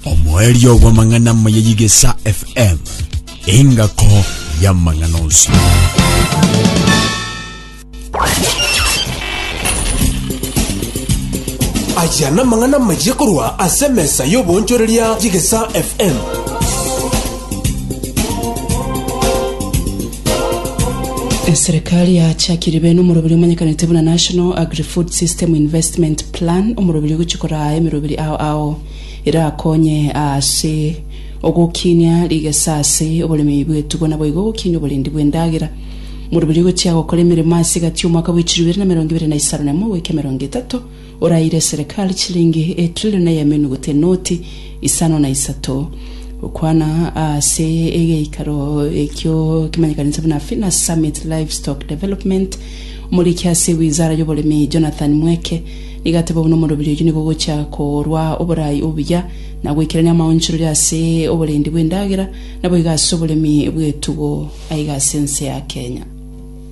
omoerio bw'amang'ana amaya y'Igesa FM, engako y'amang'ana onsi. aya namang'ana maye korwa ase emesa y'oboonchoreria y'egesa fm Eserekari yachakirie bene omorobiri omanyekanete buna National Agri-Food System Investment Plan, omorobiri ogochia koraa emerobiri ao ao erakonye ase ogokinia rigesa ase oboremi bwetubo naboigo ogokinia oborendi bw'endagera. Omorobiri ogochia gokora emeremo ase egati y'omwaka bw'echiro ibere na emerongo ibere na isano na emo goika emerongo etato. Oraire serikali chilingi etrilioni y'emenuguta enoti isano na isato, gokwana ase egeikaro ekio kemanyekanete buna Fina Summit Livestock Development. Omoriki ase wizara y'oboremi Jonathan Mweke nigo ateba buna omorobiri oyio nigo ogochia korwa oboraai obuya na goikerania amaonchorori ase oborendi bw'endagera naboigo ase oboremi bw'etugo aiga ase ense ya Kenya.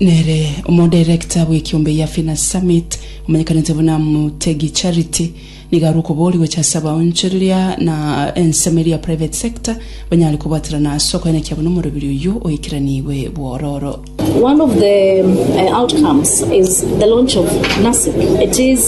Nere omodirector bw'ekiombe ya Finners Summit, omanyekanete buna Mutegi Charity, nigo arwe okobori gocha ase abaonchoreria na ensemo eria ya private sector banyare kobwaterana ase okoenekia buna omorobiri oyio oikeraniigwe bwororo. One of the uh, outcomes is the launch of NASIP. It is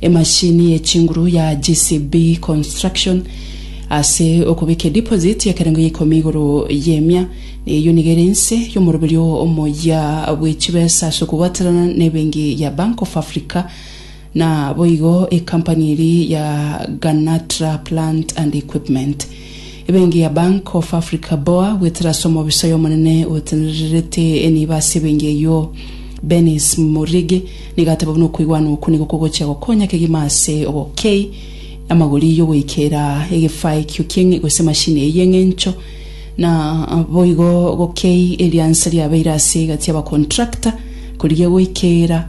Emashini ye chinguru ya JCB Construction ase okobikia deposit y'ekerengo ya ikomi igoro y'emia, na eyio nigo ere ense y'omoroberio omoyia bwe chibesa ase okobwaterana n'ebenki ya Bank of Africa. Naboigo ekampani eria ya Ganatra Plant and Equipment. Ebenki ya Bank of Africa boa goetera ase omobisa oy'omonene otenererete enibo ase ebenki eyio, Benis Murigi, nigo ateba buna okoigwana okwo nigo kogochia gokonya kegima ase obokei amagori y'ogoikera egefaikio ki'eng'encho gose emashini eyio y'eng'encho na boigo gokei eriansa riabeire ase egati y'abakontrakta korigia goikera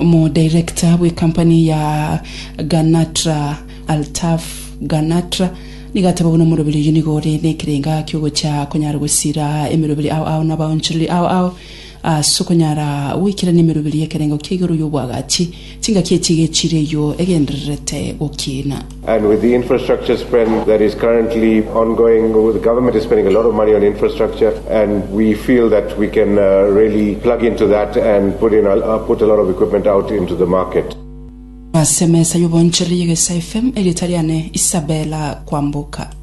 Omodirector bw'ecompany ya Ganatra Altaf Ganatra nigo ateba buna omoroberi oyio nigo ore nekerenga ki'ogocha konyara gosira emeroberi ao ao nabaonchoreri ao ao ase okonyara goikerania emeroberi y'ekerengo kia igoro y'obwagachi chingaki echi egechire eyio egendererete gokiina. Ase emesa y'oboonchoreria y'Egesaifm, erieta riane Isabella Kwamboka.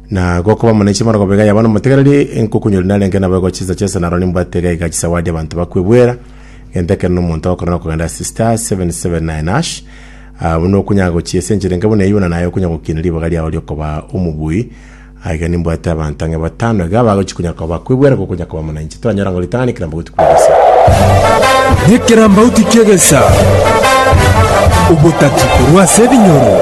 Na gokoba mono inche morogobe iga yaba nomotegereri, ngokunyora narenge nabo igo chinsa chionsi naro nimbwate iga iga chisawadi abanto bakwebwera, gento ekero nomonto okorora okogenda ase star 779 hash, ah, buna okunya gochia ase enchera enke buna eyio buna naye okonya gokiina ribaga riao riokoba omobui, aiga nimbwate abanto ang'e batano iga bagochi konya koba bakwebwera gokonya koba muna inche. Toranyora ng'a ritang'ani ekerambauti kw'egesa. Nekerambauti ki'egesa, obotati korwa ase ebinyoro.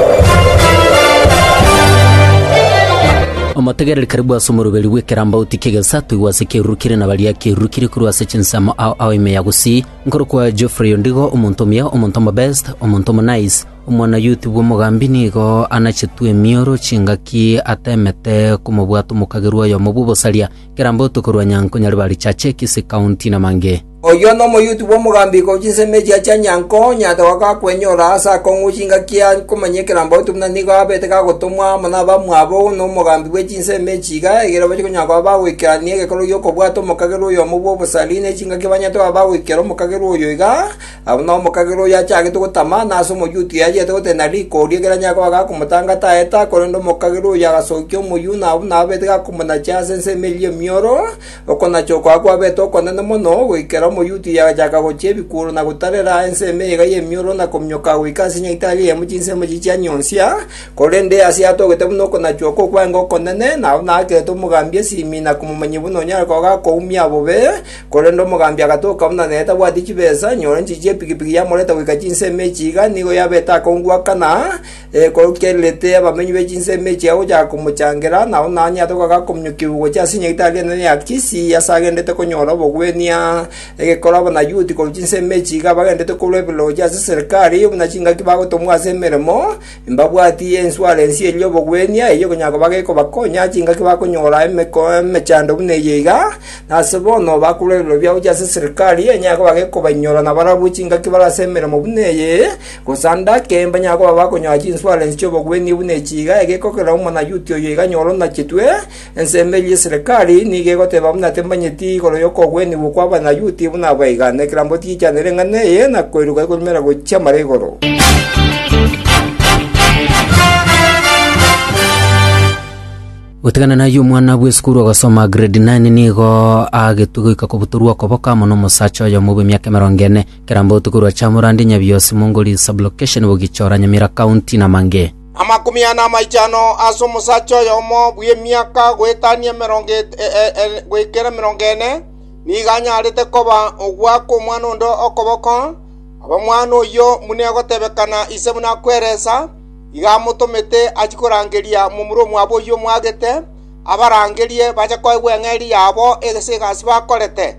Omotegereri karibu ase omoruberi bw'ekerambauti ki'egesa toigwe ase ekeruru kire na baria ekeruru kire korwa ase chinsemo ao ao ime ya gusii, nkorokwa Geoffrey Ondigo, omonto omuya, omonto omobest, omonto omonice, omwanayuti bw'omogambi nigo anachetwe emioro chingaki atemete komobwata omokagerwa oyomo bw'obosaria. Kirambo tokorua Nyanko, Nyaribari, Chache, Kisii County na mangĩ. Oyio nomoyuti bw'omogambiko o chinsemo echia chia Nyanko, nyata wa gakwenyora ase akong'u chingaki ya komanya ekerambo otu buna nigo abete gagotomwa amo nabamwabo nomogambi bwe chinsemo echi iga egere bache konyara koba bagoikerania egekorwa gi'okobwata omokagerwa oyomo bw'obosari ne chingaki banyare toba bagoikera omokagerwa oyo iga Agwo nomokagera oyo achagete gotama, na ase omoyuti oyo achiete gotenena riko, oria ekero anyare koba gakomotanga taeta, korende omokagera oyo agasokia omoyio, na buna ababete gakomonachia ase ense emeriri emioro, okonacha okobua kwabete okonene mono, goikera omoyuti oyo agachaka gochia ebikuuro na gotarera ense emeyega y'emioro na kominyoka goika ase nyaitari eyemo chinsemo echi chianyonsia, korende ase atogete buna okonachwa okwo kw'aye ngokonene, na buna akerete omogambi esimi na komomanyia buna onyare koba gakoumia bobe, Korende omogambi agatoka buna netabwati chibesa, nyore nchichi y'epigipigi yamoreta goika chinsemo echi iga nigo yabete akongwakana, ekorokererete abamenyi be chinsemo echi iga gochaka komochangera, na onye onye atokaga kominyokigwa gochia ase enyagitari enene ya Akisi, ase agenderete konyora obogwenia, egekoro Abanayuti korwa chinsemo echi iga bagenderete korwa eberero gochia ase serikari, buna chingaki bagotomwa ase emeremo, Mbabwati ensuarensi eye y'obogwenia, eyio konya koba gekobakonya ase chingaki bakonyora emekoo emechando buna eye iga, na ase bono bakorwa ebiroria gochia ase eserikari, enyare koba gekobainyora na barabwo chingaki bare ase emeremo buna eye, korende ake mbanyare koba bakonyora chinsuarensi chi'obogwenia buna echi iga, egekokera Omonayuti oyo iga nyoro nachetwe, Ensemo eria y'eserekari nigo egoteba buna temanyeti igoro y'okogwenigwa kw'Abanayuti buna abaigane. Ekerambo tigichanire eng'ana eye, na koiruka ekorumera gochia mara igoro. Gotigana nayio omwana bw'esukuru ogosoma grade 9 nigo agetwe goika kobutorwa okoboka amo nomosacha oyomo bw'emiaka emerongo ene. Ekerambo tokorwa Chamurandi, Nyabiosi, Mongoli sublocation, Bogichora, Nyamira County na Mange. Amakumi ane amaichano ase omosacha oyomo bw'emiaka goetania goikera emerongo ene, nigo anyarete koba ogwa kw'omwana onde okoboko. Ab'omwana oyio buna egotebekana ise buna akweresa, igo amotomete achie korangeria momura omwabo oyio omwagete, abarangerie bache koegwa eng'eria yabo ase egasi bakorete.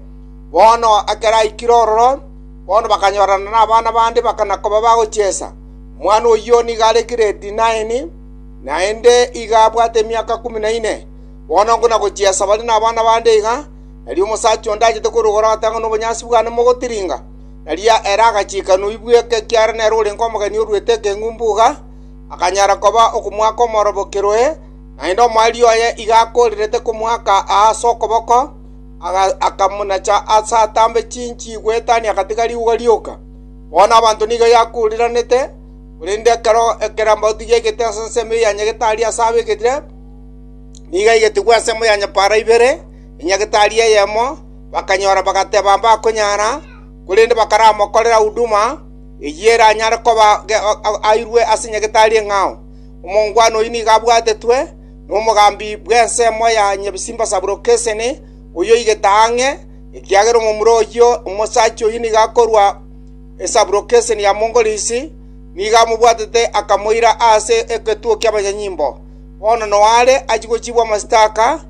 Bono ekero aikire ororo, bono bakanyorana nabana bande bakana-koba bagochiesa. Omwana oyio nigo are gredi naini, naende iga abwate emiaka ikomi na ine. Bono ngona gochia ase bare nabana bande iga, nario omosacha onde achete korogora gote ang'e nobonyansi bwane mogotiringa. Nario ere agachika noibwe, ekiagera nere orenge omogeni oruete ekeng'umbu iga, akanyara koba okomoaka omorobo kerohe, naende omoerio oye iga akoorerete komoaka aa ase okoboko, akamonacha ase atambe chinchi goetania agatiga rigwa rioka. Bono abanto nigo yakuuriranete, korende ekero ekerambauti giaigete ase ensemo ya nyagetari ase abegetire, nigo yaigetigwe ensemo ya nyapara ibere ya nyagetari eyemo, bakanyora bagateba mbakonyara, korende bakaramokorera huduma eyio eranyare koba airwe ase nyagetari eng'ao. Omongwana oyio nigo abwatetwe nomogambi bw'ensemo ya nyabisimba Sabulokesenene, oyio oigete ang'e, ekiagera omomura oyio omosacha oyio nigo akorwa esaburokeseni ya Mongolisi, nigo amobwatete akamoira aase egetuo ki'abanyanyimbo. Bono noa are achia gochiigwa amasitaka,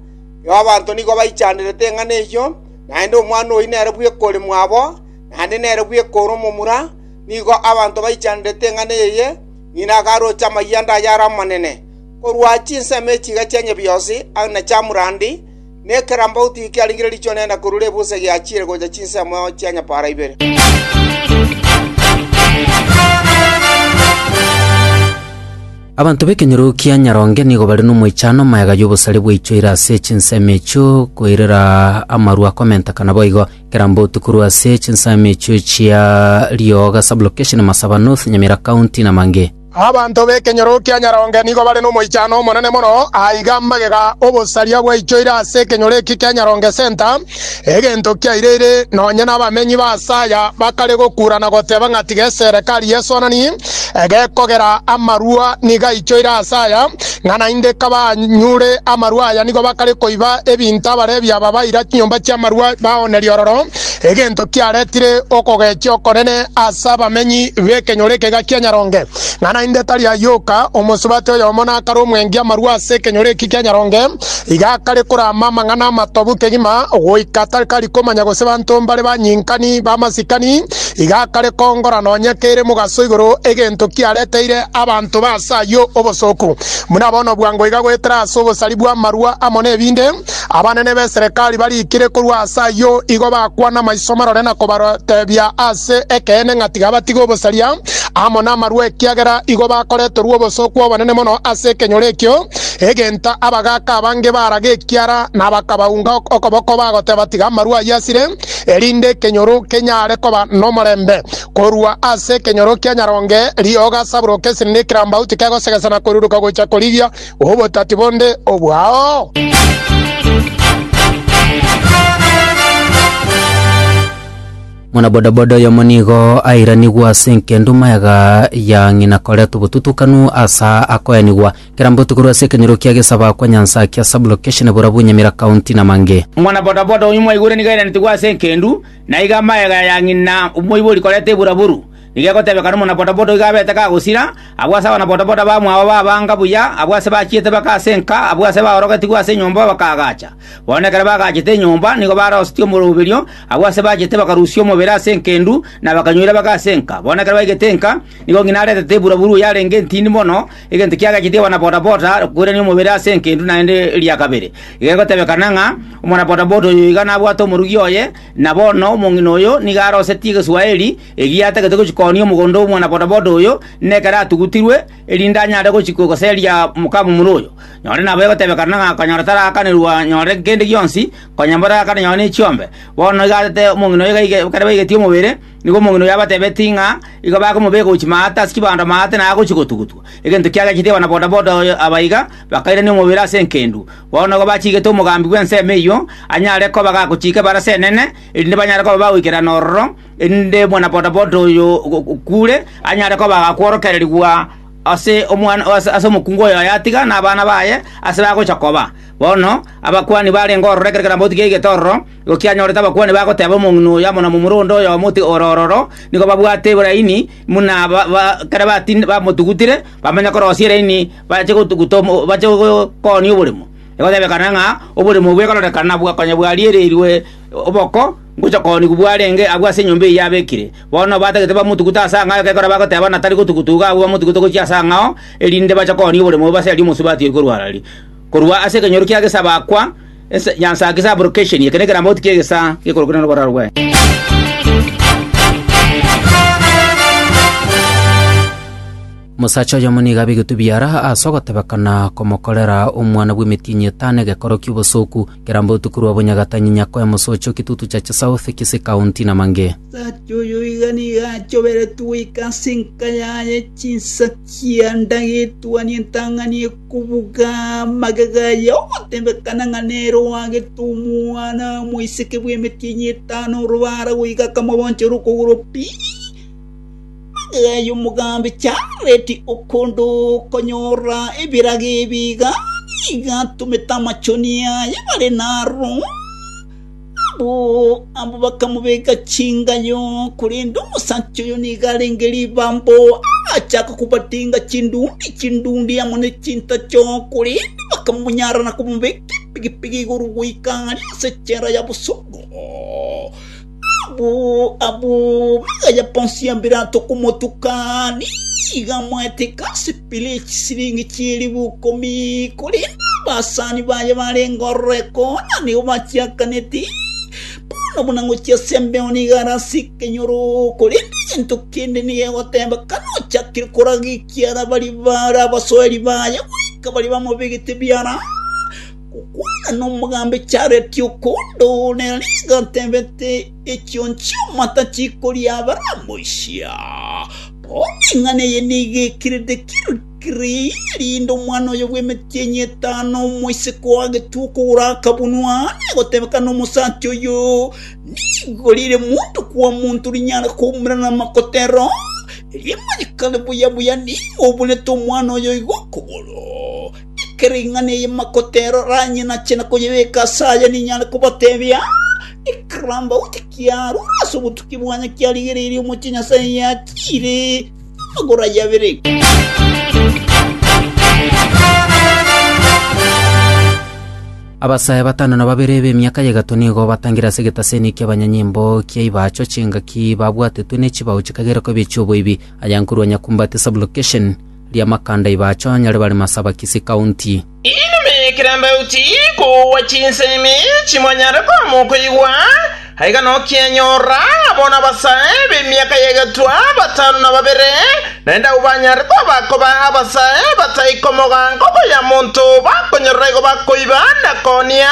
abanto nigo baichanderete eng'ana eyio, naende omwana oyio nere bw'ekore mwabo, naende nere bw'ekore omomura, nigo abanto baichanderete eng'ana eye, ng'ina agaroche amayianda ayare amanene. Korwa chinsemo echiga chia Nyebiosi na Chamurandi, Nekerambauti kiarengire riichoro nenda korwa rebusa egiachiire gocha chinsemo chia nyapaara ibere. Abanto b'ekenyoro kia Nyaronge nigo bare nomoichano omayega y'obosare bwaichoire ase chinsemo echio koirera amaru akomentekana boigo. Kerambauti korwa ase chinsemo echio chia Rioga Sub-location, Masaba North, Nyamira County na Mange. Abanto b'ekenyoro kia Nyaronge nigo bare nomoichano omonene mono. Aa iga magega obosaria bwaichoire ase ekenyoro eke kia Nyaronge Centre, egento kiaireire nonye nabamenyi b'aase aya bakare gokura na goteba ng'a tiga eserekari y'esonani egekogera amarua nigo aichoire aase aya, ng'a naende kabanyure amarua aya nigo bakare koiba ebinto abarebi aba baira chinyomba chi'amarua baonerie ororo. egento kiaretire okogechia okonene ase abamenyi b'ekenyoro ekega kia Nyaronge, ng'a naende tari ayoka. Omosubati oyomo nakare omwengi amarwa ase ekenyoro eki kia Nyaronge, iga akare korama amang'ana amatobu kegima, goika takari komanya gose banto mbare banyinkani b'amasikani, iga akare kongora nonya kere mogaso igoro egento kiareteire abanto ba ase ayio obosooku. Buna bono bwango iga goetera ase obosari bw'amarwa amo n'ebinde, Abanene b'eserekari barikire korwa ase ayio, igo bakwana amaiso marore na kobatebia ase ekeene ng'a tiga batige obosaria amo namarwa, ekiagera igo bakoreterwa obosooku obonene mono ase ekenyoro ekio, egento abagaaka abange baraga ekiara na bakabaunga okoboko bagoteba, Tiga amarwa ayio asire, erinde ekenyoro kenyare koba nomorembe. Korwa ase ekenyoro kia nyaronge rioga saburoka esiri nekerambauti kegosegesa na koruruka gocha korigia obotati bonde obwao? Mwanabodaboda oyomo nigo airanigwe ase enkenduma yaga ya ng'ina koretwa obotutukanu asa akoenigwa kerambe otuko rwase ekenyoro kia gesaba kwa nyansakia sublocation borabu nyamira county na mange Mwana bodaboda oyio mwaigure nigo airanetwe ase enkendu, na iga amayega ya ng'ina omoibori koreta eburaburu. Nigegotebeka nomonabodaboda oiga abete kagosira, abwo ase abanabodaboda bamwabo b'abanga buya, abwo ase bachiete bake ase enka, abwo ase baorogetigwe ase enyomba bakaagacha. Bono ekero bagaachete enyomba nigo barosetie omoroberio, abwo ase bachiete bakarusia omobere ase enkendu, na bakanyoira bake ase enka. Bono ekero baigete enka, nigo ng'ina aretete eburaburu yarenge entindi mono, egento kiagachetie abanabodaboda koirania omobere ase enkendu naende eria kabere. Igegotebekana ng'a omonabodaboda oyo iga nabwate omorugi oye, na bono omong'ina oyo nigo arosetie Egeswaeri, Egiatagete gochia koonia omogondo omwana bodaboda oyo, nekero atugutirwe, erinde anyare gochia koseria mokamomura oyo. Nonye nabo egotebekana ng'a konyora tarakanerwa nyore kende gionsi, konya mborakane nyore nechiombe. Bono iga atete omong'ina oyo gaige ekero baigetie omobere, nigo omong'ina oyo abatebetie ng'a igo bakomobeka gochia maate ase chibando maate na agochia gotugutwa. Egento kiagachete abana bodaboda oyo aba iga, bakairania omobere ase enkendu. Bono igo bachigete omogambi bw'ensemo eyio anyare koba gagochiika ebarasi enene, erinde banyare koba bagoikerana ororo, erinde omwana bodaboda oyo okuure anyare koba agakworokererigwa ase omwana ase ase omokungu oyo yatiga na abana baye ase bagocha koba. Bono abakuani barenge ororo ekero keromo gotiga egetororo, igo kianyorete abakuani bagoteba omong'ina oyo amo na momura onde oyo oyomo oti ore ororo, nigo babwate ebelaini buna ba ba ekero batinde bamotugutire, bamanya korosia elaini bache gotuguta omo bache gokooni oboremo. Egotebekana ng'a oboremo bwekororekana bwa konya bwariererigwe oboko. Ngocha kooni kobua arenge agwo ase enyomba eyio abekire. Bono batagete bamotugute ase ang'ao ekekora bagoteba buna tari gotugutuga agwo bamotugute gochia ase ang'ao, erinde bache koonia oboremo obo ase aria omosie batiiri korwa arari. Korwa ase ekenyoro kia gesaaba akwa, ense yansaaki sabrokesheni, eke nekerambauti ki'egesaa gekorokire noboraro bw'ense. Omosacha oyomo nigo abegete obiara ase ogotebekana komokorera omwana bw'emetienyi etano egekoro ki'obosoku, Kera mbotuko rwa bonyagatanyi Nyakoe mosoche o Kitutu Chache South, Kisii County, na mange. Omosacha oyio iga nigo achoberetwe goika ase enka yaye chinsaki ande agetwania entang'ani ekobuga magega aye ogotebekana ng'a nere oagete omwana omoiseke bw'emetienyi etano orobara goika akamobonchera okogoro pi Magega omogambi Jaredi okonde okonyora ebirago ebi iga, nigo atomete amachoni aye bare naro. Abwo abwo bakamobeka chingayo, korende omosacha oyo nigo arenge ribambo, agachaka kobatinga chindundi chindundi amo ne chintacho, korende bakamonyara na komobeka epigipigi igoro goika aria ase echela ya bosuku. Abwo bagaya bonsi ya Pilato komotuka, nigo amoeteka ase pira ye chisiringi chi'eribu ikomi. Korende abasani baye barenge ororeko, na nigo bachiakaneti, Bono buna ngochia ase embeo nigo are ase ekenyoro, korende egento kende nigo egoteba, Kanochakire koragia ekiara baria bare abasoeri baye goika baria bamobegete biara. Gokwana nomogambi chareti okondo ne riga tebete echio chi'amata chikoria abaramoisia. Bono ing'ana eye nigo ekerete kirikiri erinde omwana oyo bw'emetienyi etano omoiseke o Hagetu okogoro akabunwa na egotebeka nomosacha oyo, Nigo rire monto kwa monto rinyare koumera namakotero, erio manye kare buya buya nigo obunete omwana oyo igo okogoro. Ekero ing'ana eye makoteroranie nache na koyebeka ase aye, ninyare kobatebia, Ekerambe gose kiarure ase obotuki bwane kiarigereirie omochie Nyasae yatiire amagoro aye abere. Abasae batano na babere b'emiaka ya egato nigo batangire ase egetaseni ki'abanyanyimbo kia Ibacho chingaki babwatetwe ne chibao chikagera koba echi'oboibi, aya nkorwa Nyakumbati Sub-location. ri'amakanda ibacho anyare bare Masabakisi County. Inwe kirabauti kogwa chinsemi chimonyare koamwa okoigwa, aiga nokianyorora abo nabasae b'emiaka y'egetwa batano na babere, naende abwo banyare koba koba abasae batai komogaanga okoyia monto bakonyorora igo bakoiba na koonia,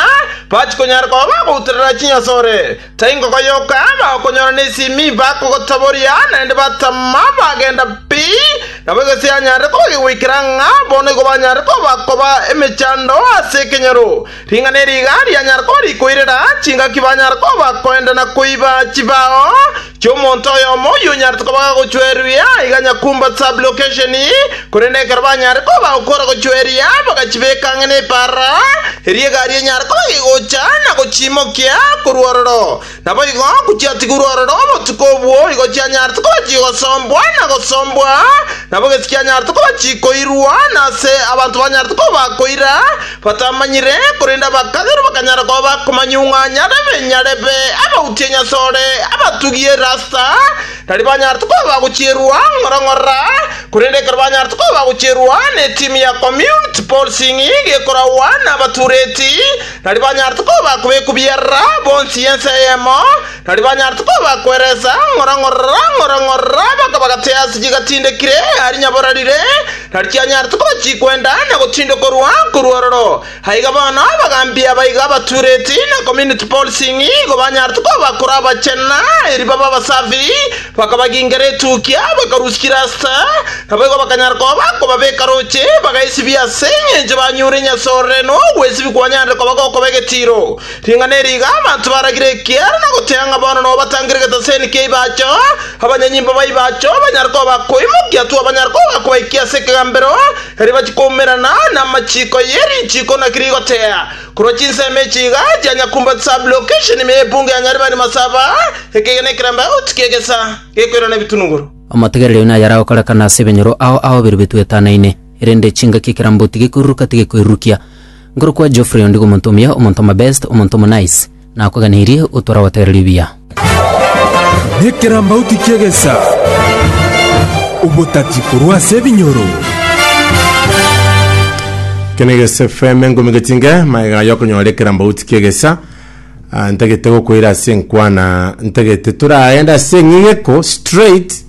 bachikonyara koba bagouterera chinyasore. Taingogoyoka bakonyora nesimi bakogotaboria, naende batama bagenda pi, nabo egese yanyarire koba egegoikera ng'a bono igo banyare koba koba emechando ase ekenyoro. Ring'ana eri iga rianyare koba rikoirera chingaki banyare koba koenda na koiba chibao chi'omonto oyomo oyio onyarete koba gagochweruia aiga nyakumba sublocation, Korende ekero banyare koba okora gochwa eria, bagachibeeka ang'e nepaara, erio egari enyare koba gegocha na gochiimokia korwa ororo. Naboigo kochiatigurwa ororo obotuko obwo, igo chianyarete koba chigosombwa na gosombwa, nabo gesi kianyarete koba chikoirwa, na ase abanto banyarete koba bakoira, batamanyire, korende abakagerwa bakanyara koba bakomanyung'anya, na ebinyarebe, abauti enyasore, abatugi erasta, Tari banyarete koba bagochierwa ng'ora ng'ora, korende ekero banyarete koba bagochierwa netimu ya community policing gekoragwa nabatureti, tari banyarete koba bakobekwa biarara bonsi ense eyemo, tari banyarete koba bakweresa ng'ora ng'ora ng'ora ng'ora baka bagate ase chigatindekire aria nyaborarire, tari chianyarete koba chikwenda na gotindokorwa korwa ororo. Aiga bono abagaambi aba iga abatureti na community policing igo banyarete kobakora abachenu eri babe abasafi, bakabagingera etukia, bakarusia chirasita, naboigo bakanyara koba bakobabeka roche, bagaesibia ase engencho banyure Inyasae orere na ogwesibia kwanyarire koba gokoba egetiiro. Ring'ana eri iga abanto baragire ekiara na goteha ng'a bono nobo batangire getaseni kia Ibacho, abanyanyimbo ba Ibacho banyare koba bakoimokia twabanyare koba bakobaikia ase ekegambero, Erio bachikoumerana namachiiko ye richiiko naki rigotea, korwa chinsemo echi iga chia Nyakumba Sub-location ime y'epungu ya Nyaribari Masaba, ekegena ekeramba out ki'egesa gekoirana ebitunugoro. Omotegereri oyo naye aragokorekana ase ebenyoro ao ao biria bitwetanaine, erende chingaki ekerambo tigekoiruruka tigekoirurukia. Nkorokwa Geoffrey ondigo omonto omuya, omonto omabest, omonto omonice. Nakweganeirie otware gotera ribuya. Nekerambauti ki'egesa, obotati korwa ase ebinyoro. Kenegesa FM engumi getinge maega yokonyora ekerambauti kiegesa ah, ntagete gokoira ase enkwana ntagete toraende ase eng'ing'eko straight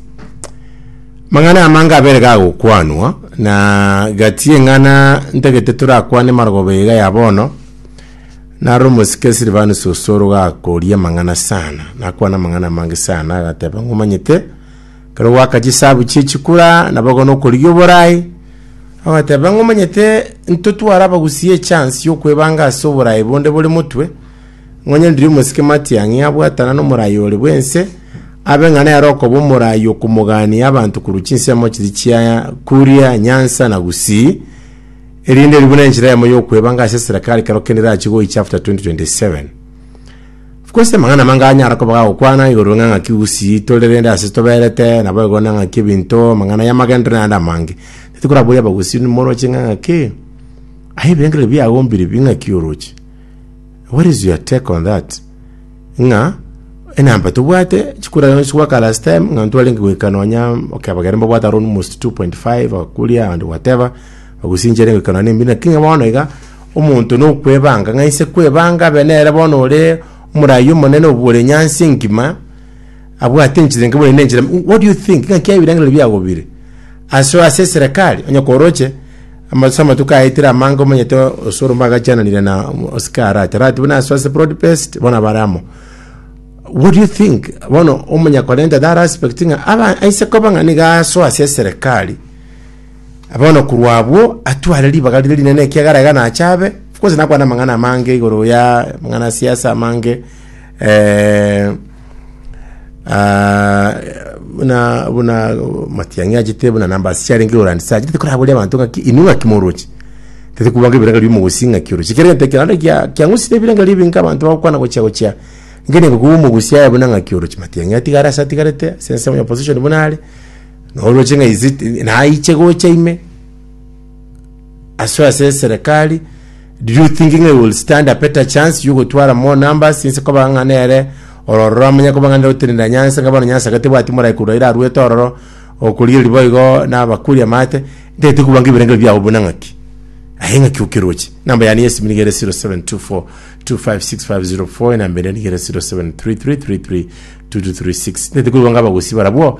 mang'ana amange abere gagokwanwa na gati eng'ana ntagete torakwane marogoba iga ya bono Naro omosike Silvanus osoro gakoria amang'ana sana, nakwana amang'ana amange sana, agateba ng'a omanyete, kero gwaka chisabu chie chikura, nabogono okorigia oborai, agateba ng'a omanyete, ntotware abagusi echance yokwebanga ase oborai bonde bore motwe, ng'onye ndiri omosike Matiang'i abwatana nomorai ore bwense, abe ng'a nere okoba omorai okomogania abanto korwa chinsemo chiri chia Kuria, Nyansa na Gusii, Erinde erio buna enchera yamo yokwebanga ase eserekari kero kende erache goicha after 2027. Of course amang'ana amange anyara koba gagokwana igoro ng'a ng'aki usi tore rende ase toberete nabo igo na ng'aki ebinto amang'ana y'amagendero na ande amange. Titokoraboria abagusii nimoroche ng'a ng'aki aye ebirengererio biago mbiribi ng'aki oroche. What is your take on that? ng'a enamba tobwate chikura chionsi gwaka last time ng'a ntwarenge goika nonya okebagera mbabwate around almost 2.5 okuria and whatever ogosinchera goika nonya embino lakini ng'a bono iga omonto nokwebanga ng'a inse kwebanga abe nere bono ore omorayi omonene obwore nyansi engima abwate enchera enke buna ere nenchera ime. What do you think? Ngaki ebirengererio biagobire. Ase ase eserekari, onye koroche, amatusa amatuko aetire amange omanyete osoro mbagachananire na osike arate. Arate buna ase ase broad based, bona bare amo. What do you think? Bono omanya korenta that aspect ng'a aba aise koba ng'a niga aso ase eserekari. Bono korwa abwo, atware ribaga rire rinene ekiagera iga nachabe. Of course nakwana amang'ana amange igoro ya amang'ana ya siasa amange, Eh, ah, buna buna matiang'i achete buna namba siarenge orandi sa achete koraboria abanto ng'aki inwe ng'aki morochi tete kubanga ebiranga biri mogosi ng'aki orochi kere gete kiranda kia kiang'usire ebiranga biri binga abanto bagokwana gochia gochia ngene ngokuba omogusi aye buna ng'aki orochi matiang'i atigare ase atigarete ase ense onya opposition buna are noroche ng'a is it naiche gocha ime asoe ase eserekari Do you think ng'a he will stand a better chance y'ogotwara more numbers inse koba ng'a nere ororo oramanya koba ng'a nere otenena nyanse ng'a bono nyanse iga tebwati morai korwa ere arwete ororo okorigereria boigo nabakuri amate ntagete koba ng'ebirengererio biabo buna ng'aki aye ng'aki okeroche namba yane y'esimu niga ere 0724256504 enamba eria niga ere 0733332236 ntagete koigwa ng'a abagusii barabwo